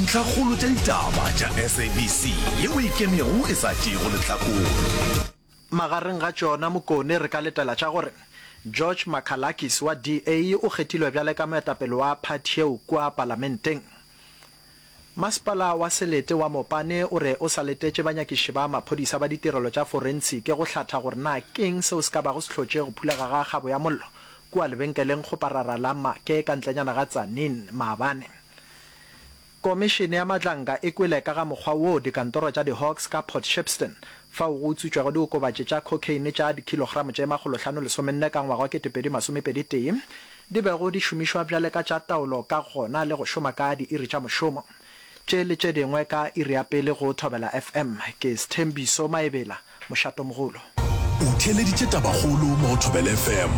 Ntlhakgolo tša ditaba tša SABC ye o ikemego e sa tšeego lehlakore. Magareng ga tšona Mokone re ka letela tša gore George Makhalakis wa DA o kgethilwe bjale ka moetapele wa phathi yeo kua palamenteng. Masepala wa Selete wa Mopane o re o sa letetše banyakiši ba maphodisa ba ditirelo tša forensiki go hlatha gore na ke'ng seo se ka bago se hlotše go phulega ga kgabo ya mollo kua lebenkeleng Kgoparara la Maake ka ntlenyana ga Tzaneen maabane. Komišene ya Matlanka e kwele ka ga mokgwa woo dikantoro tša di-Hawks ka Port Shepstone, fao go utswitšwego diokobatši tša cocaine tša dikilogramo tše makgolo hlano lesomenne ka ngwaga wa ketepedi masomepedi tee, di bego di šomišwa bjale ka tša taolo ka gona le go šoma ka diiri tša mošomo. Tše le tše dingwe ka iri ya pele go Thobela FM. Ke Sthembiso Maebela. mošatomogolo. O theeleditše tabakgolo mo go Thobela FM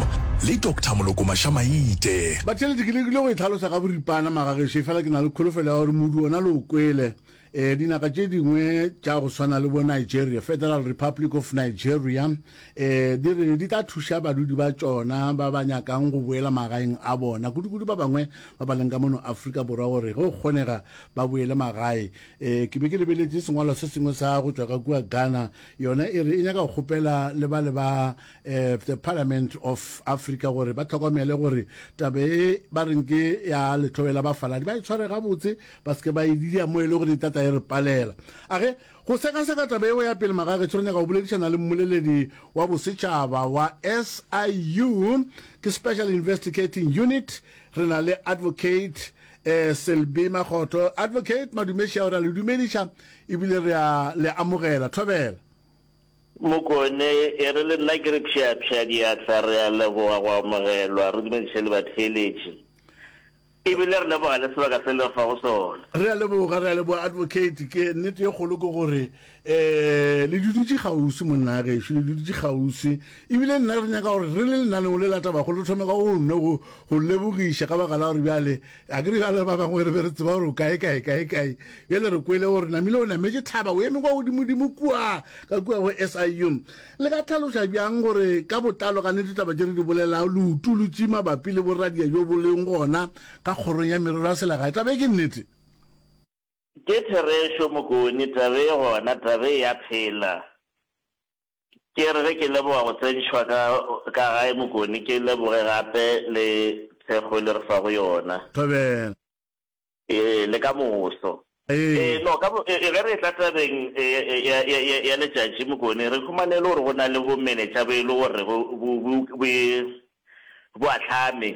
le Doctor Molokomasha Maite. Batheeletši, ke lekile go e hlalosa ka boripana maga gešo, efela ke na le kholofelo ya gore modu wona le o kwele. Ee, dinaka tše dingwe tša go swana le bo Nigeria, Federal Republic of Nigeria, ee, di re di tla thuša badudi ba tšona ba ba nyakang go boela magaeng a bona, kudukudu ba bangwe ba ba leng ka mono Afrika Borwa gore ge go kgonega ba boele magae. Ee, ke be ke lebeletše sengwalo se sengwe sa go tšwa ka kua Ghana, yona e re e nyaka go kgopela le bale ba um the Parliament of Africa gore ba tlhokomele gore tabe e ba reng ke ya letlhobela bafaladi ba e tshware gabotse, ba se ke ba e didia mo e le gore e tata e re palela. A ge go sekaseka tabe yeo ya pele, Magagešo, re nyaka go boledišana le mmoleledi wa bosetšhaba wa SIU, ke Special Investigating Unit, re na le Advocate Eh, Selby Magotho, Advocate Madumeshau, re a le dumediša ebile re a le amogela. Thobela. Mokone, E re le nna ke re pšheapšhea diatla, re a leboga go amogelwa, re dumediše le batheeletši ebile re leboga le sebaka se le re fa go sona. Re a leboga, re a leboga Advocate, ke nnete ye kgolo ke gore Ee, le dudutše kgauswi, monna a gešo, le dudutše kgauswi. Ebile nna re nyaka gore re le lenaneo le latabago le thome ka go nno go, go lebogiša ka baka la gore bjale, a ke re bjale ba bangwe re be re tseba gore o kae, kae, kae, kae. Bjale re kwele gore namile o nametše thaba, o eme kwa godimodimo kua, ka kua go SIU. Le ka tlhaloša bjang gore ka botlalo ka nnete taba tše re di bolelago leutolotši mabapi le boradia bjo bo leng gona ka Kgorong ya Merero ya Selegae? Taba ye ke nnete. Ke therešo mokoni taba e gona taba e ya phela ke re ge ke leboga go tsentšhwa ka ka gae mokoni ke leboge gape le thekgo le re fa go yona. Thobela. Ee le ka moso. Ee. Ee no ka bo e ge re etla tabeng ya ya ya ya letšatši mokoni re humane e le gore go na le bo menetša bo e le gore bo bo bo bo bo bo ahlame,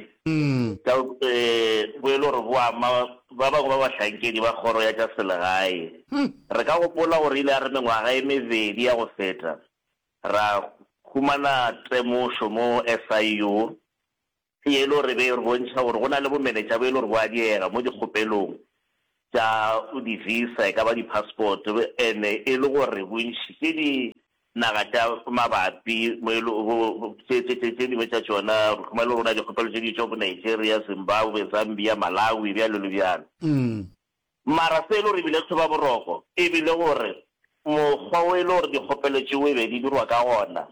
ka bo e le gore bo ama ba bangwe ba bahlankedi ba kgoro ya tša selegae. Re ka gopola gore ile ya re mengwaga e mebedi ya go feta, ra humana temošo mo SIU ye e le gore e be e re bontšha gore go na le bomenetša bo e le gore bo a diega mo dikgopelong tša di-visa, e ka ba di-passport, e ne e le gore bontši ke dinaga tša mabapi mo e le go tše, tše, tše, tše dingwe tša tšona re khuma e le gore go na le dikgopelo tše di tšwa bo Nigeria, Zimbabwe, Zambia, Malawi, bjalo le bjalo. Mara se e le gore e bile tlhoba boroko e bile gore mokgwa o e le gore dikgopelo tšeo e be di dirwa ka gona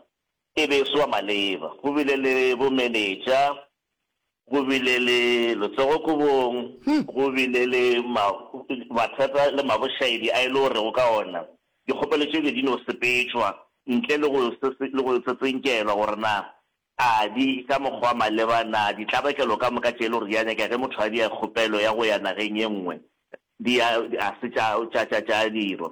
E be e soa maleba. Go bile le bomenetša, go bile le letsogo-kobong, go bile le ma, mathata le mabošaedi a e le gorego ka ona dikgopelo tše bile di no sepetšwa ntle le go, le go tsetsentšelwa gore na a di ka mokgwa wa maleba, na ditlabakelo ka moka tše e le gore di a nyakega ge motho a dia kgopelo ya go ya nageng ye nngwe di a, a se tša, tša, tša, tša dirwa.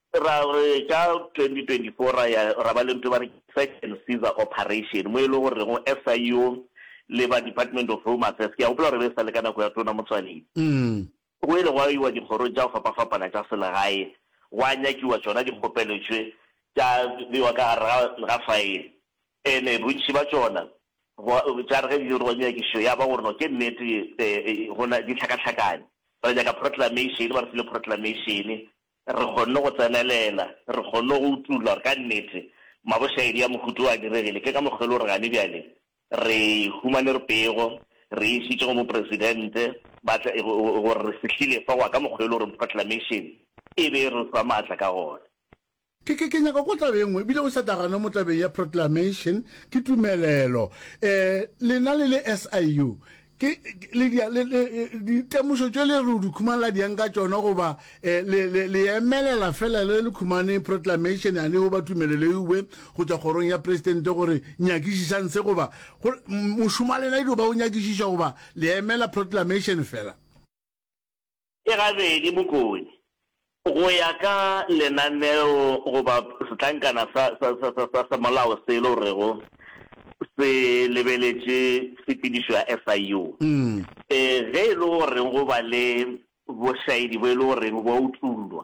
Ra re ka 2024 ra ya ra ba le ntho e ba re ke search and seizure operation mo e le go rego SIU le ba Department of Home Affairs, ke a gopola gore e be e sa le ka nako ya Tona Motsoaledi, go ile gwa iwa dikgorong tša go fapafapana tša selegae gwa nyakiwa tšona dikgopelo tše tša bewa ka gare ga ga file and-e bontši ba tšona gwa tša re ge di dirwa nyakišo ya ba gore no ke nnete go na di hlakahlakane. Ra nyaka proclamation, ba re file proclamation Re kgonne go tsenelela, re kgonne go utolla gore ka nnete mabošaedi a mohuta wo a diregile. Ke ka mokgwa e le gore gane bjale re humane re pego, re e išitše go Mopresidente ba tle, gore re fihlile fa go wa ka mokgwa e le gore Proclamation e be e re fa maatla ka gona. Ke, ke, ke nyaka go tla beng, e bile o sa tagano mo tabeng ya Proclamation, ke tumelelo. Eh, lena le le SIU, Ke, ke, le di, le, le, ditemošo tšo le re o di khumala diang ka tšona, goba e, le, le, le emelela fela le le khumane proclamation yane goba tumelelo e uwe go tšwa kgorong ya Presidente gore nyakišišang se, goba go, mošomo wa lena e dio ba o nyakišiša, goba le emela proclamation fela? e gabedi bokodi go ya ka lenaneo goba setlankana sa sa semolao se e le gorego se lebeletše tshepedišo ya SIU. Ge e le gore go ba le bošaedi bo e le goreng bo a utollwa,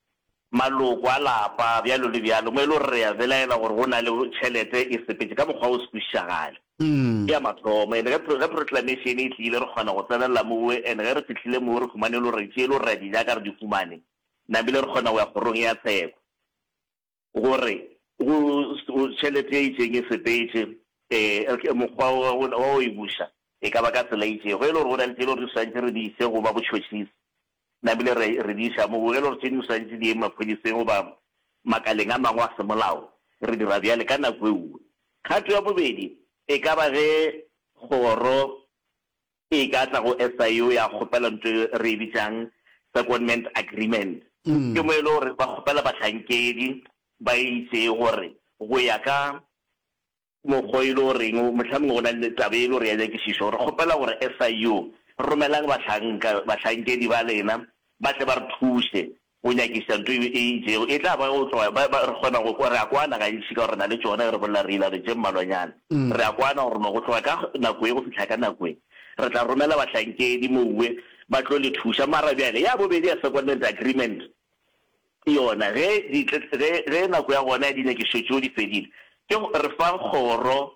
maloko a lapa, bjalo le bjalo, mo e lego gore re a belaela gore go na le tšhelete e sepetše ka mokgwa o se kwešišagale. Ke ya mathomo. And ge, ge Proclamation e tlile, re kgona go tsenelela mowe, and ge re fihlile mowe, re humane e le gore tše e le gore re a di nyaka, re di humane, namile re kgona go ya Kgorong ya Tsheko. gore go tšhelete e itšeng e sepetše, ee, mokgwa wa go wa go e buša e ka ba ka tsela e itšego, e le gore go na le tše e le gore di swantše re di ise go ba botšhotšhisi, namile re re di iša moo, e le gore tše dingwe swantše di ye maphodiseng goba makaleng a mangwe a semolao, re dira bjale ka nako e nngwe. Kgato ya bobedi e ka ba ge kgoro e ka tla go SIU ya kgopela nto e re e bitšang secondment agreement. Ke mo e le gore ba kgopela bahlankedi ba e itše gore go ya ka mokgwa e le goreng mohlomongwe go na le taba e le gore ya nyakišišo, re kgopela gore SIU romelang bahlanka, bahlankedi ba lena ba tle ba re thuše Go nyakiša nto e e itšego e tla ba go tloga ba, ba, re kgona go kwa, re a kwana gantši ka gore re na le tšona, ge re bolela re ila re tše mmalwanyana. Re a kwana gore no go tloga ka nako ye go fihla ka nako ye, re tla romela bahlankedi mouwe ba tlo le thuša. Mara bjale ya bobedi ya secondment agreement yona, ge di, ge, ge nako ya gona ya dinyakišo tšeo di fedile, ke go re fa kgoro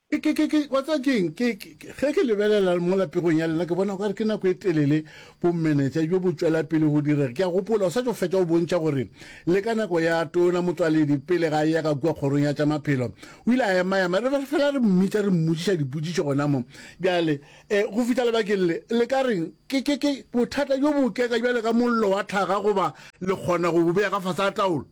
Ke, ke, ke, ke, wa tseba ke eng? Ke, ke, ke, ge ke lebelela mola pegong ya lena, ke bona okare ke nako e telele bomenetša bjo bo tšwela pele go direga. Ke a gopola o sa tšo fetša go bontšha gore le ka nako ya Tona Motšwaledi pele ga a eya ka kua Kgorong ya tša Maphelo, o ile a ema-ema, re be re fela re mmitša, re mmotšiša dipotšišo gona mo. Bjale, e, go fihla lebakeng le, le ka reng, ke, ke, ke, bothata bjo bo oketša bjalo ka mollo wa tlhaga, goba le kgona go bo bea ka fase ga taolo.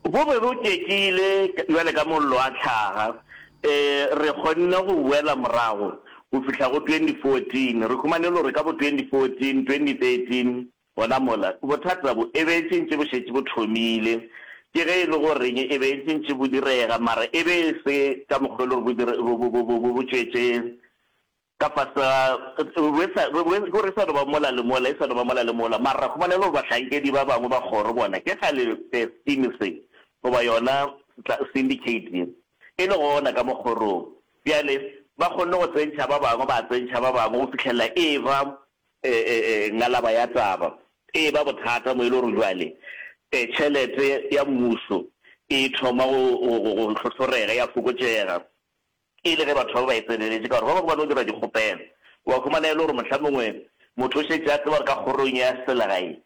Go be go tšekile bjale ka mollo a hlaga. Ee, re kgonne go boela morago go fihla go 2014. Re humanile gore ka bo 2014, 2013, gona mola, bothata bo e be e tšintši bo šetše bo thomile. Ke ge e le goreng e be e tšintši bo direga, mara e be e se ka mokgwa e le gore bo tšwetše. Ka fase ga, re sa, re, re, go re sa no ba mola le mola, e sa no ba mola le mola, mara ra kgomana e le gore bahlankedi ba bangwe ba kgoro bona ke kgale se scheme se, goba yona setla, syndicate ye, e le gona ka mo kgorong. Bjale ba kgonne go tsentšha ba bangwe, ba tsentšha ba bangwe, go fihlelela e eba, e, e, e, ngalaba ya taba, e eba bothata mo e le gore bjale, e, tšhelete ya mmušo e thoma go, go, go, go hlohlorega, ya fokotšega. Ke le ge batho ba be ba e tseneletše, ka gore ba bangwe ba no dira dikgopelo. Wa humana e le gore mohla mongwe motho o šetše a tseba gore ka kgorong ya selegae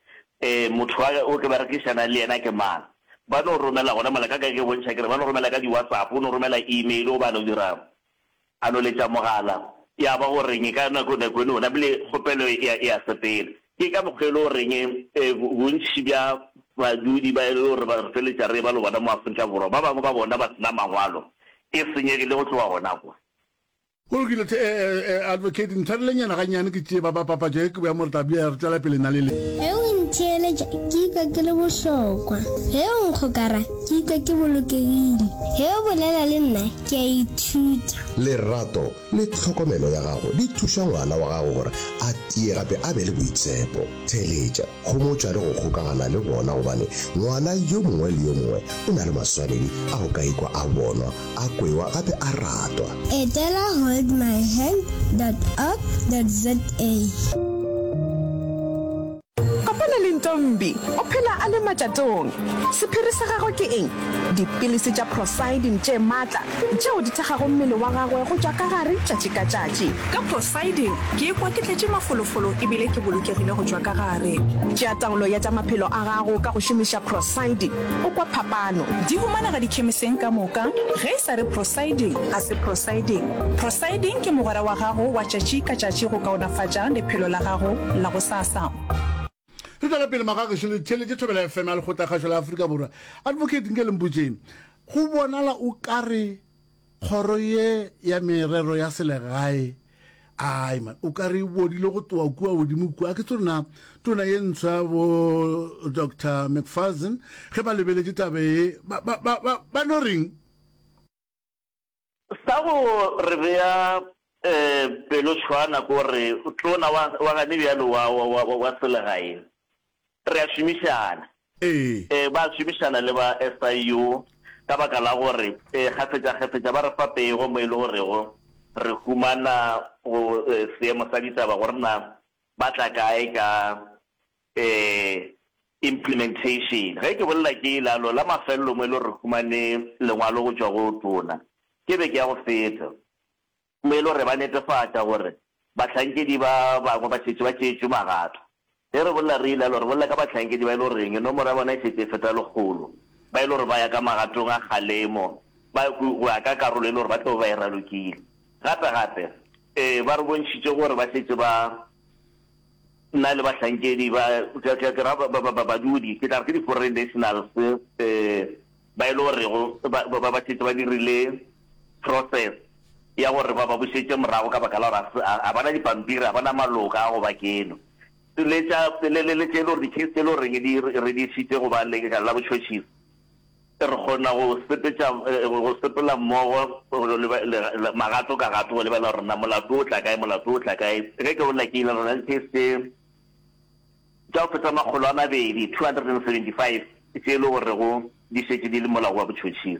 motho wa o ke ba rekišana le yena ke mang. Ba no romela gona mola, ka ka ke bontšha ke re ba no romela ka di-WhatsApp, o no romela email goba a no dira a no letša mogala. Ya ba go reng ka nako nako eno o namile kgopelo ya ya sepela. Ke ka mokgwa e lego reng bontši bja badudi ba e lego gore re feletša re eba le bona mo Afrika Borwa, ba bangwe ba bona ba se na mangwalo, e senyegile go tloga gona kwa. Go lokile, hle Advocate, ntshwarelenyana gannyane ke tšee baba papatšo ye ke boya more tla bea re tšwela pele na le le. Ge o ntheeletša, ke ikwa ke le bohlokwa. Ge o nkgokara, ke ikwa ke bolokegile. Ge o bolela le nna, ke a ithuta. Lerato le tlhokomelo ya gago di thuša ngwana wa gago gore a tie gape a be le boitshepo. Theeletša, homotša le go kgokagana le bona gobane ngwana yo mongwe le yo mongwe o na le maswanedi a go ka ikwa a bonwa, a kwewa gape a ratwa. Etela holdmyhand dot org dot za. Kopana le Ntombi, o phela a le matšatong. Sephiri sa gagwe ke eng? Dipilisi tša Prosidin tše matla, tšeo di thekgago mmele wa gagwe go tšwa ka gare tšatši ka tšatši. Ka Prosidin, ke ikwa ke tletše mafolofolo e bile ke bolokegile go tšwa ka gare. Tšea taolo ya tša maphelo a gago ka go šomiša Prosidin, o kwa phapano. Di humanega dikhemiseng ka moka. Ge e sa re Prosidin, ga se Prosidin. Prosidin ke mogwera wa gago wa tšatši ka tšatši go kaonafatša lephelo la gago la go sa. Assam. re tšwela pele magageso le theletše thobela fm ya lekgotlakgašo la aforika borwa advocate nke lempotšeng go bonala o ka re kgoro ye ya merero ya selegae ai man o ka re e bodile go toa kua godimo kua ke tsona tona ye ntsho ya bo dr mcfarson ge ba lebeletše tabe e ba no reng Sa go re bea pelotshwana ke gore tona wa gane bjalo wa selegae re a šomišana. Ee, ba a šomišana le ba SIU ka baka la gore kgafetšakgafetša ba re fa pego mo e le gorego re humana go seemo sa ditaba gore na ba tla kae ka Ee, implementation. Ge ke bolela ke ilalo la mafelelo mo e le gore re humane lengwalo go tšwa go Tona ke beke ya go feta, mo e le gore ba netefatša gore bahlankedi ba bangwe ba šetše ba tšeetšwe magato. Ge re bolela re ilalo, re bolela ka bahlankedi ba e le goreng nomoro ya bona e šetše e feta lekgolo, ba e le gore ba ya ka magatong a kgalemo ba go ya ka karolo e le gore ba tlabe ba e ralokile. Gape-gape, ee, ba re bontšhitše gore ba šetše ba. Nna le bahlankedi ba, ke, ke, ke ra ba, ba, ba, ba, badudi, ke tla re ke di-foreign nationals, eh, ba e le gorego ba, ba, ba, ba šetše ba dirile process ya gore ba ba bušetše morago ka baka la gore ga se- ga ga ba na dipampiri, ga ba na maloka a go ba keno. Le tša, le, le, le tše e le gore di-case tše e le goreng di, re, re di išitše go ba lekala la botšhotšhisi, Re kgona go sepetša, go sepela mmogo magato ka gato, go lebelela gore na molato o tla kae, molato o tla kae. Ge ke bolela ke ile, re na le tše tša go feta makgolo a mabedi, 275, tše e le gorego di šetše di le molao wa botšhotšhisi.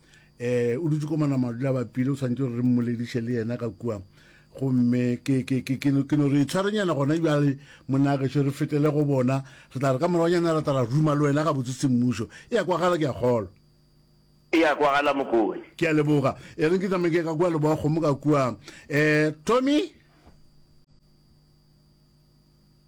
um o dutse ko manamadula a bapile o tshwanetse gore re mmolediše le yena ka kua gomme ke no re tshwarenyana gona jale monagešo re fetele go bona re tla re ka moragonyana ra tala ruma le wena ga botse semmušo e ya kwagala ke a kgolwa e ya kwagala mokone ke a leboga e reng ke tsameke ka kua leboga kgomo ka kua um tommy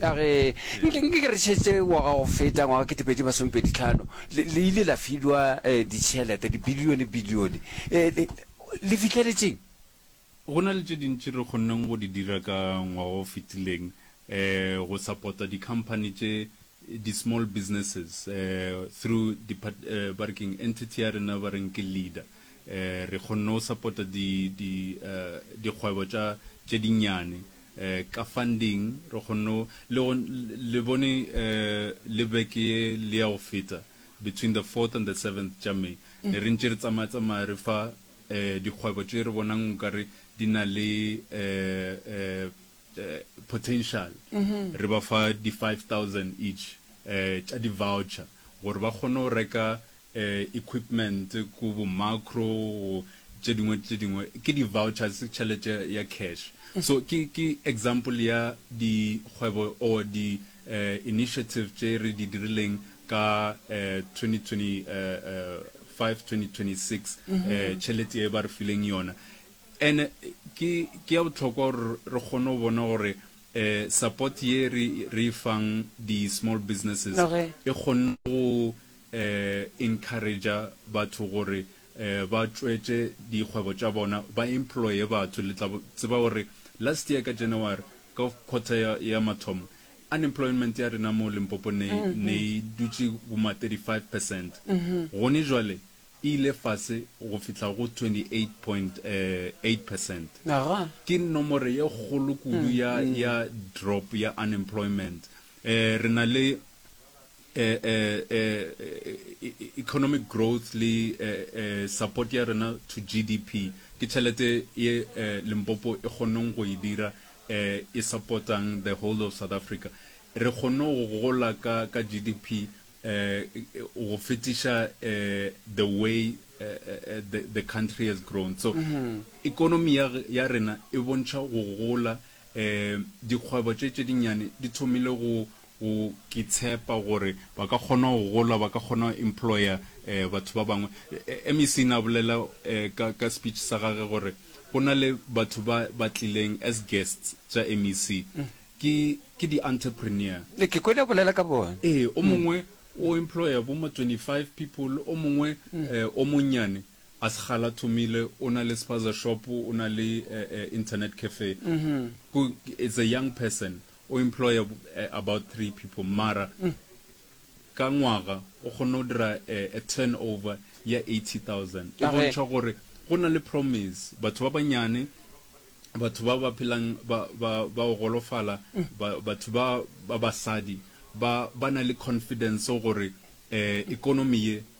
Ka ge, nke, nke ke re šetše ngwaga go feta, ngwaga ketepedi masomepedi tlhano, le, le ile la filwa eh, ditšhelete, dibilione, bilione. Eh, le, le fihleletšeng? Go na le tše dintši re kgonneng go di dira ka ngwaga o fetileng, eh, go sapota dikhamphani tše, di-small businesses, eh, through depart-, eh, ba re ke'ng, entity ya rena ba reng ke LEADER. Eh, re kgonne go sapota di, di, eh, dikgwebo tša, tše dinnyane. ka funding re kgonne le go le bone le beke ye le ya go feta between the fourth and the seventh tša May ne re ntše re tsamaya tsamaya re fa dikgwebo tše re bonang nkare di na le potential re ba fa di five thousand each tša di voucher gore ba kgone go reka equipment ko bo macro go tše dingwe tše dingwe ke di vouchers ke tšhelete ya cash so ke ke example ya di kgwebo or di initiative tše re di dirileng ka 2025 2026 tšhelete e ba re fileng yona ene ke ke ya botlhokwa gore re kgone go bona gore support ye re re fang di small businesses e kgonne go encourager batho gore ba tšwetše dikgwebo tša bona ba employe batho le tla tseba gore last year ka January ka quarter ya ya mathomo unemployment ya rena mo Limpopo ne ne e dutše boma 35 percent gone jwale e ile fase go fihla go 28.8 percent ke nomoro ye kgolo kudu ya ya drop ya unemployment re na le eh, eh, eh, eh economic growth le eh, eh, support ya rena to gdp ke tšhelete ye eh, limpopo e kgoneng go e dira eh, e supportang the whole of south africa re kgonne go gola ka, ka gdp eh, go fetiša eh, the way eh, eh, eh, the, the country has grown so mm -hmm. economy ya, ya rena e bontšha go gola eh, dikgwebo tše tše dinnyane di thomile go go ke tshepa gore ba ka kgona go gola ba ka kgona go employer batho ba bangwe MEC na bolela ka ka speech sa gage gore go na le batho ba ba tlileng as guests tša MEC ke ke di entrepreneur ke kwele bolela ka bona ee o mongwe o employer bo ma 25 people o mongwe o monnyane a segala thomile o na le spaza shop o na le internet cafe it's a young person O employa about three people mara ka ngwaga o kgona go dira a turnover ya eighty thousand. E bontšha gore go na le promise. Batho ba banyane, batho ba ba phelang ba ba ba go golofala, batho ba ba basadi ba ba na le confidence gore economy ye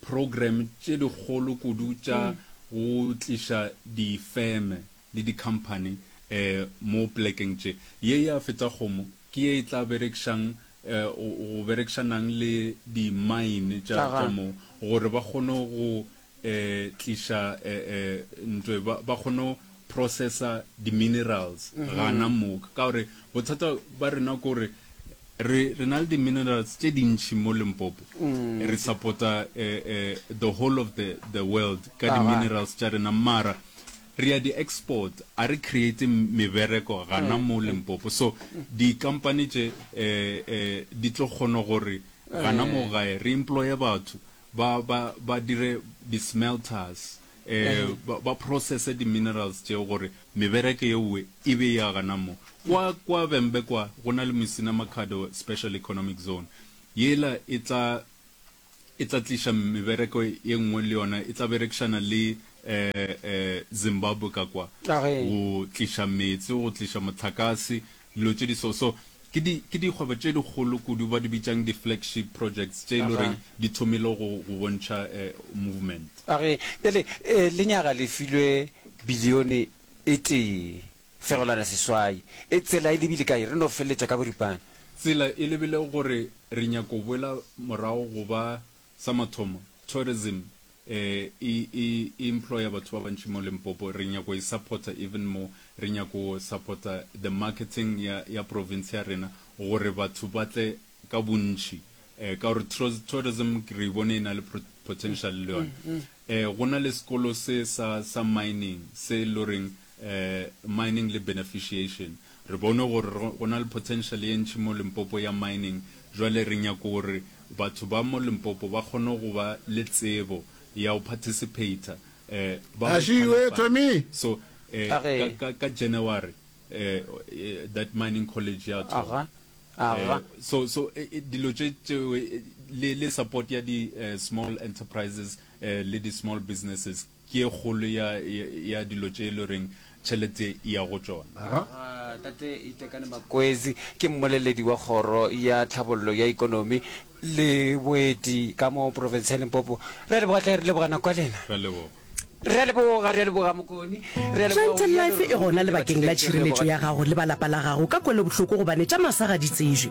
Program tše dikgolo kudu tša go tliša difeme le dikhamphani mo plekeng tše. Ye ya Fetsagomo ke ye e tla berekšang go berekšanang le di mine tša mo gore ba kgone go tliša ntwe ba kgone processa di minerals mm -hmm. gana moka ka gore bothata ba rena ko re re re na le di minerals tse dintši mo limpopo mm. re supporta uh, uh, the whole of the, the world ka di minerals tša rena mara re ya di export a re create mebereko gana mm. mo limpopo so di company tše uh, uh, di tlo kgona gore gana mo gae re employe batho ba ba ba dire di smelters ba processe di minerals tšeo gore mebereke yeowe e be ya gana mo. Kwa kwa Vhembe kwa go na le Musina Makhado Special Economic Zone, yela e tla e tla tliša mebereko ye nngwe le yona e tla berekišana le Zimbabwe ka kwa go tliša meetse, go tliša mohlakase Dilo tše di so so ke di ke dikgwebo tše dikgolo kudu ba di bitšang di flagship projects tše e le goreng di thomile go go bontšha movement. A re bjale lenyaga le filwe bilione e tee fegelwana seswai, e tsela e lebile kae? Re no feleletša ka boripana. Tsela e lebile gore re nyaka go boela morago go ba sa mathomo, tourism, e e e employer batho ba bantši mo Limpopo, re nyako e supporta even more, re nyako supporta the marketing ya ya province ya rena gore batho ba tle ka bontši um ka gore tourism re bone e na le potential le yona. Um go na le sekolo se sa sa mining se loreng Mining le Beneficiation. Re bone gore go na le potential ye ntši mo Limpopo ya mining, jwale re nyaka gore batho ba mo Limpopo ba kgone go ba le tsebo ya go participator ba go qualify. So ka January that mining college ya thoma. So dilo tše tšeo le support ya di small enterprises le di small businesses. Ke e kgolo ya, ya, ya dilo tše e le goreng tšhelete e ya go tšona. Ga. Ga Tate Itekane Makwezi ke mmoleledi wa Kgoro ya Tlhabollo ya Ikonomi le Boeti ka mo Profense ya Limpopo. Re a leboga hle, re leboga nako ya lena. Re a leboga. Re a leboga, re a leboga Mokoni, re a leboga Chantel Life e gona lebakeng la tšhireletšo ya gago le ba lapa la gago ka kwelobohloko gobane tša masa ga di tsejwe.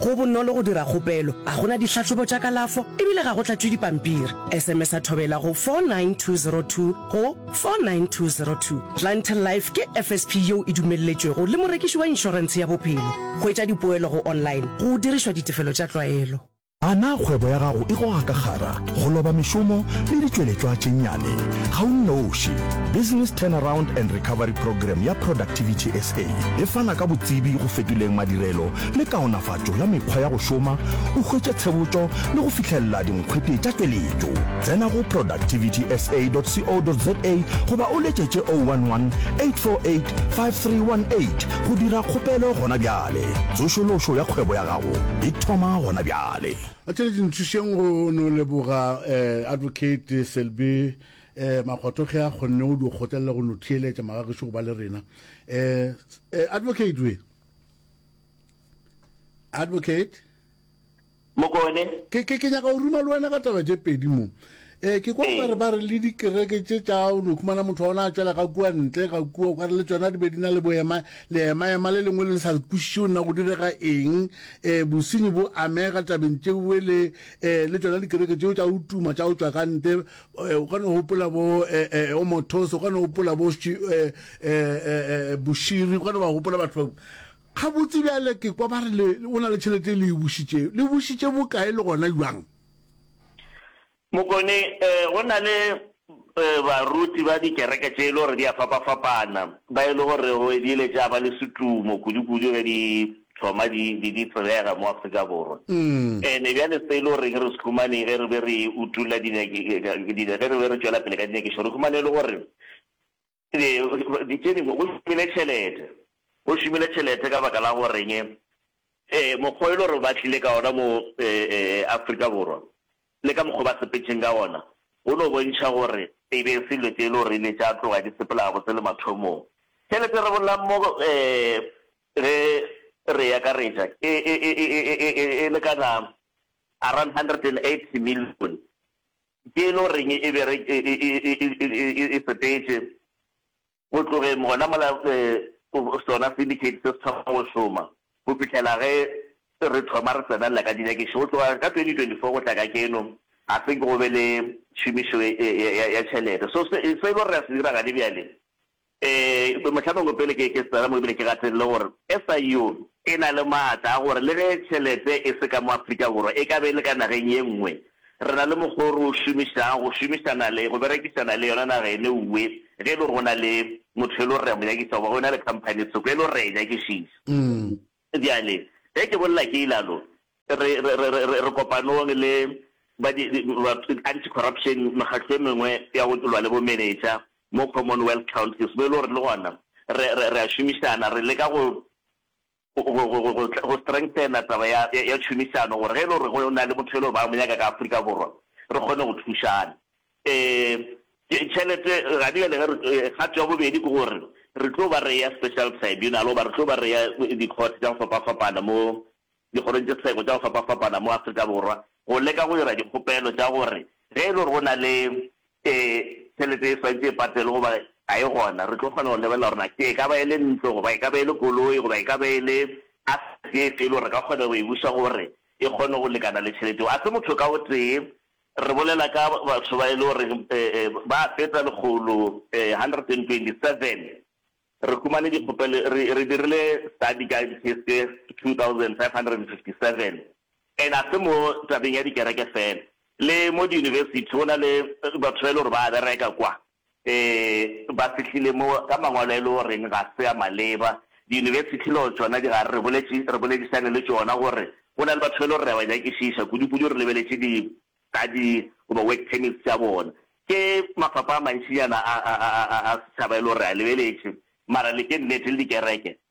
Go bonolo go dira kgopelo. Ga go na dihlahlobo tša kalafo e bile ga go tlatšwe dipampiri. Esemesa Thobela go 49202 go 49202. Plantel Life ke FSP yeo e dumelletšwego le morekiši wa inšorentshe ya bophelo. Hwetša dipoelo go online go dirišwa ditefelo tša tlwaelo. A na kgwebo ya gago e goga ka kgara, go loba mešomo le ditšweletšwa tše nnyane? Ga o nnoši. Business Turnaround and Recovery Programme ya Productivity SA e fana ka botsebi go fetoleng madirelo le kaonafatšo ya mekgwa ya go šoma, o hwetše tshebotšo le go fihlelela dinkgwete tša tšweletšo. Tsena go productivitysa.co.za goba o letšetše 011 848 5318 go dira kgopelo gona bjale. Tsošološo ya kgwebo ya gago e thoma gona bjale. A tšere dintšhišeng go no leboga eh, Advocate Selby eh, Makgotho ge a kgonne go di kgotlelela go no theeletša magagešu go ba le rena eh, eh, Advocate we. advocate mokone ke ke ke nyaka o ruma le wena ka taba tše pedi mo eh ke kwa ba re ba re le dikereke tše tša o no khumana motho wa ona a tšwela ka kua ntle ga kua o ka re le tsona di be di na le boema le ema ema le lengwe le le sa le kwišiše o nna go direga eng eh bosenyi bo amega tabeng tšewe le eh le tsona dikereke tšeo tša o tuma tša o tšwa ka ntle eh, o kgona gopola bo eh, eh, o mothos o kgona gopola bo boširi o kgona ba gopola batho bao ga botse bjale ke kwa ba re o na le tšhelete e le e bušitše le bušitše bokae le gona jwang mokone um go na le um baruti ba dikereke tše e le gore di a fapa-fapana ba e le gore go ebile tša ba le setumo kudu-kudu ge di thoma di be di tsebega mo Afrika Borwa. Ene bjale se e le goreng re se humane ge re be re utolla dinyakišo, ge re be re tšwela pele ka dinyakišo, re humane e le gore tše dingwe go šomile tšhelete. Go šomile tšhelete ka baka la goreng mokgwa o e le gore ba tlile ka ona mo Afrika Borwa le ka mokgwa o ba sepetšeng ka ona go no bontšha gore e be e se dilo tše e le gore e ne tša tloga di sepela gabotse le mathomong. Tšhelete re bolelang mo Ge re e akaretša, e lekana around R180 million. Ke e le goreng e sepetše go tlogeng gona mola sona syndicate se se thoma go šoma go fihlela ge re thoma re tsenelela ka dinyakišišo. Go tloga ka 2024 go tla kajeno, ga se nke go be le tšhomišo ya tšhelete. So se e le gore re a se dira gane bjale, Ee, mohla mongwe pele ke ke tsena mo ebile ke gatelile gore SIU e na le maatla a gore le ge tšhelete e se ka mo Afrika Borwa e ka be e le ka nageng ye nngwe, re na le mokgwa o re o šomišang go šomišana le, go berekisana le yona naga ene uwe ge e le gore go na le motho e le gore re a mo nyakiša goba go na le khamphani thoko e le gore re a e nyakišiša. Bjale, ge ke bolela ke ilalo, re, re, re, re, re, re kopanong le ba di, di, ba anti-corruption, mekgatlo e mengwe ya go lwa le bomenetša mo Commonwealth Countries, mo e le gore le gona re, re, re a šomišana, re leka go, go, go, go, go, go strengthena taba ya, ya, ya tšhomišano, gore ge e le gore go na le motho e le gore ba mo nyaka ka Afrika Borwa, re kgone go thušana. Ee, tšhelete ga di bjale ge re, kgato ya bobedi ke gore re tlo ba re eya special tribunal goba re tlo ba re eya dikhote tša go fapafapana mo dikgorong tše seko tša go fapafapana mo Afrika Borwa go leka go dira dikgopelo tša gore ge e le gore go na le tšhelete e swantše e patelwe goba ga e gona re tlo kgona go lebelela gore na e ka ba e le ntlo goba e ka ba e le koloi goba e ka ba e le asset efe e le gore re ka kgona go e buša gore e kgone go lekana le tšhelete eo. A se motho ka o tee Re bolela ka batho ba e le gore ba a feta lekgolo 127. Re humane dikgopelo, re dirile study ka di-case tše 2557. And ga se mo tabeng ya dikereke fela, le mo di-university go na le batho ba e le gore ba a bereka kwa. Se ba fihlile mo ka mangwalo e le o reng ga se a maleba. Diyunibesithi le tšona di gare, re boledišane le tšona gore go na le batho ba e le gore re a ba nyakišiša, kudukudu re lebeletše di-study goba work permits tša bona. Ke mafapha a mantšinyana a setšhaba e le gore re a lebeletše, mara le ke nnete le dikereke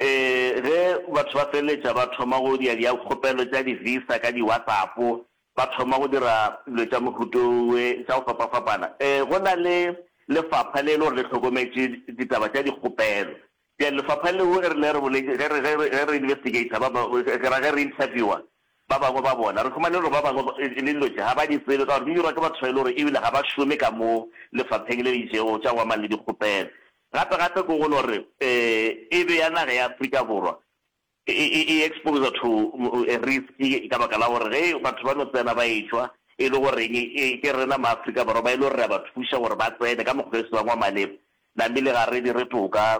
Ee, ge batho ba feleletša ba thoma go dira dikgopelo tša di-visa ka di-WhatsApp, ba thoma go dira dilo tša mohuto we tša go fapafapana. Ee, go na le lefapha le e le gore le hlokometše ditaba tša dikgopelo. Bjale lefapha leo e rile re boletše, ge re, ge re, ge re investigator ba bangwe, ke ra ge re interviewer ba bangwe ba bona, re humane gore ba bangwe e, le dilo tše ga ba di tsebe ka gore di dirwa ke batho ba e le gore ebile ga ba šome ka mo lefapheng le le itšego tša go amana le dikgopelo. Gape gape ke go lo re e be ya naga ya Afrika Borwa e e exposed to a risk ka baka la gore ge batho ba no tsena ba etšwa e le goreng ke rena ma Afrika Borwa ba e le gore re a ba thuša gore ba tsene ka mokgwa e se bang wa maleba namile ga re dire toka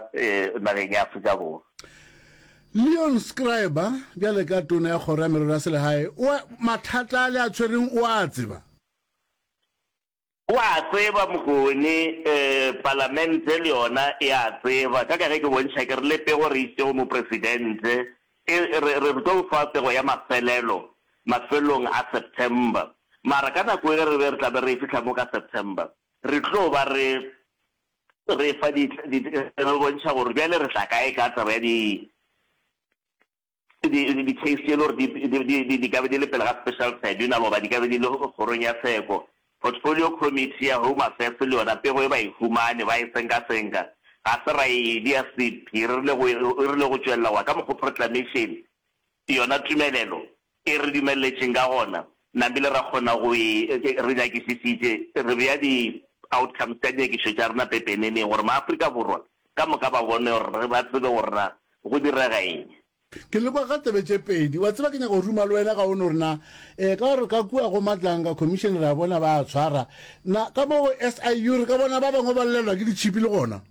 nageng ya Afrika Borwa. Leon Schreiber, bjale ka Tona ya Kgoro ya Merero ya Selegae, o a, mathata a le a tshwereng o a tseba. O a tseba Mokone, Palamente le yona e a tseba, ka ka ge ke bontšha ke re le pego re iše go Mopresidente, e, re, re tlo o fa pego ya mafelelo mafelelong a September. Mara ka nako ye re be re tla be re e fihla mo ka September, re tlo ba re, re fa di, di, re bontšha gore bjale re tla kae ka taba ya di, Di-case tše e le gore di ka be di le pele ga Special Tribunal goba di ka be di le kgorong ya tsheko, Portfolio Committee ya Home Affairs le yona pego e ba e humane, ba e senkasenka. Ga se ra e dia sephiri e rile go tšwelela goba ka mokgwa o proclamation yona tumelelo E re dumelletšeng ka gona, nabile ra kgona go e, re nyakisisitše, re bea di outcomes tša dinyakišo tša rena pepeneneng gore maAfrika Borwa ka moka ba bone gore, ba tsebe gore na go direga eng. Ke le kwa ka tsebe tše pedi. Wa tseba ke nyaka go ruma le wena ka ono gore na, ee, ka gore ka kua go Matlanga Commission re a bona ba a tshwara, na ka mo go SIU re ka bona ba bangwe ba llelwa ke ditšhipi le gona.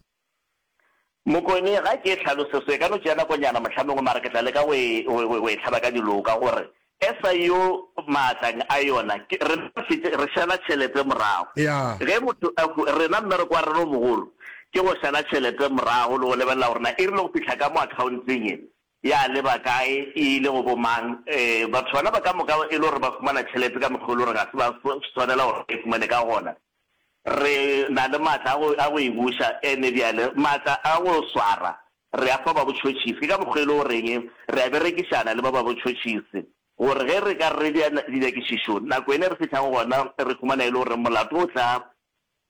Mokone, ga ke e hlalose so, e ka no tšea nakonyana mohlomongwe, mara ke tla leka go e, go, go, go e hlaba ka diloka, gore SIU maatlang a yona, ke, rena re fete, re šala tšhelete morago. Ya. Ge motho a hwe, rena mmereko wa rena o mogolo ke go šala tšhelete morago le go lebelela gore na e rile go fihla ka mo akhaonteng e. Ya leba kae? E ile go bomang? Ee, batho bana ba ka moka e le gore ba fumana tšhelete ka mokgwa o e le gore ga se ba swanela gore ba e fumane ka gona. Re na le matla a go e buša, and-e bjale matla a go swara re a fa ba botšhotšhisi. Ke ka mokgwa e le goreng re a berekišana le ba ba botšhotšhisi gore ge re ka re dira dinyakišišo, nako yene e re fihlang gona re fumana e le gore molato o tla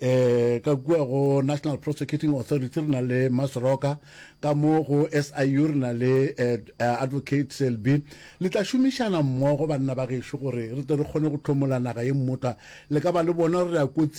Ee, ka kua go National Prosecuting Authority re na le Masoroka, ka mo go SIU re na le eh, Advocate Selby. Le tla šomišana mmogo banna ba gešo gore re tle re kgone go hlomola naga ye mmotla. Le ka ba le bona gore re a kotsing.